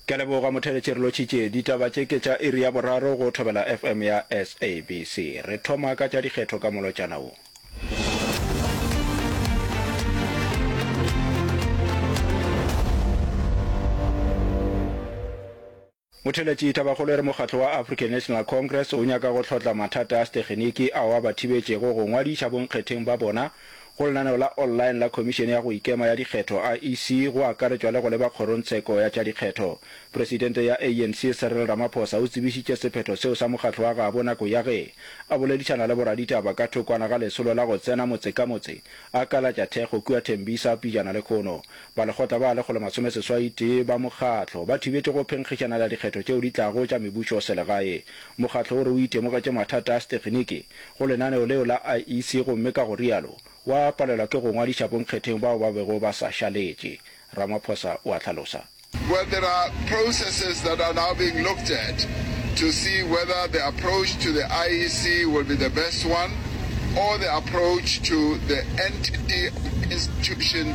Ke a leboga motheeletši re lotšhitše ditaba tše ke tša iri ya boraro go Thobela FM ya SABC. Re thoma ka tša dikgetho ka molotšana wo. Motheeletši Thabakgolo e re mokgatlo wa African National Congress o nyaka go hlotla mathata a sethekgeniki ao a ba thibetšego go ngwadiša bonkgetheng ba bona go lenaneo la online la Khomišene ya go Ikema ya Dikgetho, IEC, go akaretšwa le go leba kgorongtsheko ya tša dikgetho. Presidente ya ANC, Cyril Ramaphosa o tsebišitše sephetho seo sa mokgatlo wa gabo nako ya ge a boledišana le boraditaba ka thokwana ga lesolo la go tsena motse ka motse a kalatša thekgo kua Tembisa pejana lekhono Ba lekgotla ba lekgolo masome seswai tee ba mokgatlo ba thibetše go phenkgišana la dikgetho tšeo di tlago tša mebušo selegae. Mokgatlo o re o itemogetše mathata a setekginiki go lenaneo leo la IEC gomme ka go rialo wa palelwa ke go ngwadiša bonkgetheng bao ba bego ba sa šaletše, Ramaphosa o a hlalosa. Well there are processes that are now being looked at to see whether the approach to the IEC will be the best one or the approach to the entity or institution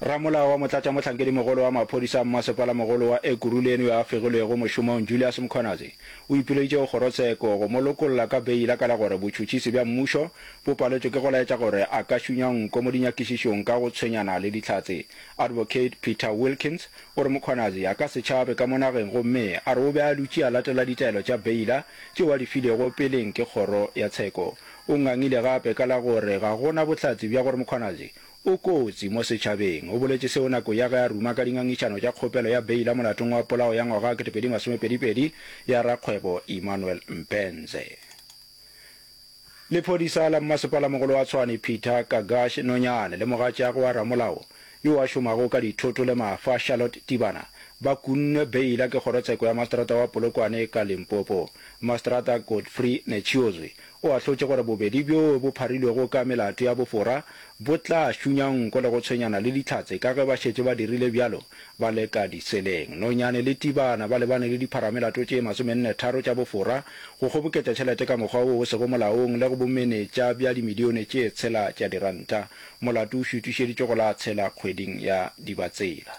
Ramolao wa Motlatšamohlankedimogolo wa Maphodisa a Mmasepalamogolo wa Ekurhuleni yo a fegilwego mošomong Julius Mkhwanazi o ipileditše go kgorotsheko go mo lokolla ka beila ka la gore botšhotšhisi bja mmušo bo paletšwe ke go laetša gore a ka šunywa nko mo dinyakišišong ka go tshwenyana le dihlatse. Advocate Peter Wilkins o re Mkhwanazi a ka se tšhabe ka mo nageng gomme a re o be a dutše a latela ditaelo tša beila tšeo a di filego peleng ke kgoro ya tsheko. O ngangile gape ka la gore ga go na bohlatse bja gore Mkhwanazi O kotsi mo setšhabeng, o boletše seo nako ya ge a ruma ka dingangišano tša kgopelo ya beila molatong wa polao ya ngwaga wa 2022 ya rakgwebo Emmanuel Mpenze. Lephodisa la mmasepalamogolo wa Tshwane Peter Kagash Nonyane le mogatšagwe wa ramolao yo a šomago ka dithoto le mafa Charlotte Tibana ba kunnwe beila ke kgorotsheko ya maseterata wa Polokwane ka Limpopo. Maseterata Godfrey Netshiozwi O ahlotše gore bobedi bjo bo pharilwego ka melato ya bofora bo tla šunya nko le go tshwenyana le Dihlatse ka ge ba šetše ba dirile bjalo ba le ka diseleng. Nonyane le Tibana ba lebane le dipharamelato tše masomenne-tharo tša bofora, go kgoboketša tšhelete ka mokgwa wo o sego molaong le go bomenetša bja dimilione tše tshela tša diranta. Molato o šutišeditšwe go la Tshela kgweding ya Dibatsela.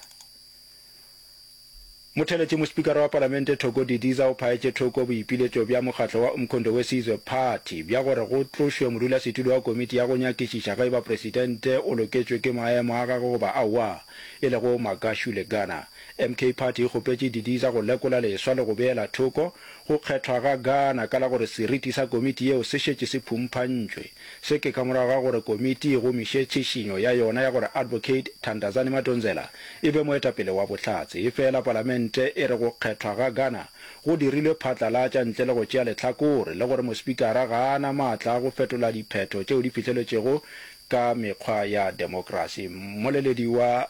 Motheletši mospikara wa palamente Thoko Didiza o phaetše thoko boipiletšo bja mokgatlo wa Umkhondo Wesizwe Party bja gore go tlošwe modulasetulo wa komiti ya go nyakišiša ge eba presidente o loketšwe ke maemo a gagwe goba aowa, e lego Magashu Legana. MK Party e kgopetše Didiza go lekola leswa le go beela thoko go kgethwa ga Gana ka la gore seriti sa komiti yeo se šetše se phumphantšwe. Se ke ka morago ga gore komiti e gomiše tšhišinyo ya yona ya gore Advocate Thandazani Madonsela e be moetapele wa Bohlatse. Efela palamente e re go kgethwa ga Ghana go dirilwe phatlalatša ntle le go tšea lehlakore le gore mospikara ga a na maatla a go fetola diphetho tšeo di fihleletšwego ka mekgwa ya demokrasi. Mmoleledi wa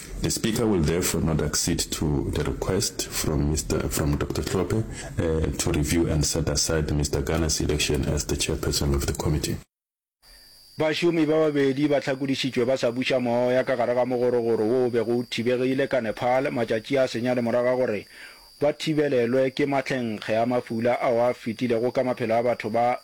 The Speaker will therefore not accede to the request from Mister from Doctor Tlhophe to review and set aside Mister Gana's election as the Chairperson of the Committee. Bašomi ba babedi ba hlakodišitšwe ba sa buša moya ka gare ga mogorogoro wo o bego o thibegile ka Nepal matšatši a senyane morago ga gore ba thibelelwe ke matlhenkge a mafula ao a fetilego ka maphelo a batho ba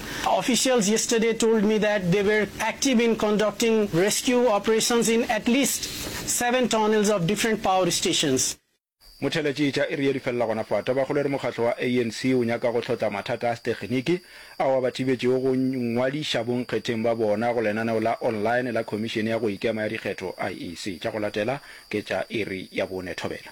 Officials yesterday told me that they were active in conducting rescue operations in at least seven tunnels of different power stations. Motheeletšeetša e rile di felela gona fao. Tabakgolo e re mokgatlo wa ANC o nyaka go hlotla mathata a sethekniki ao a ba thibetšego go nngwadiša bonkgetheng ba bona go lenaneo la online la Khomišene ya go Ikema ya Dikgetho, IEC. Tša go latela ke tša iri ya bone. Thobela.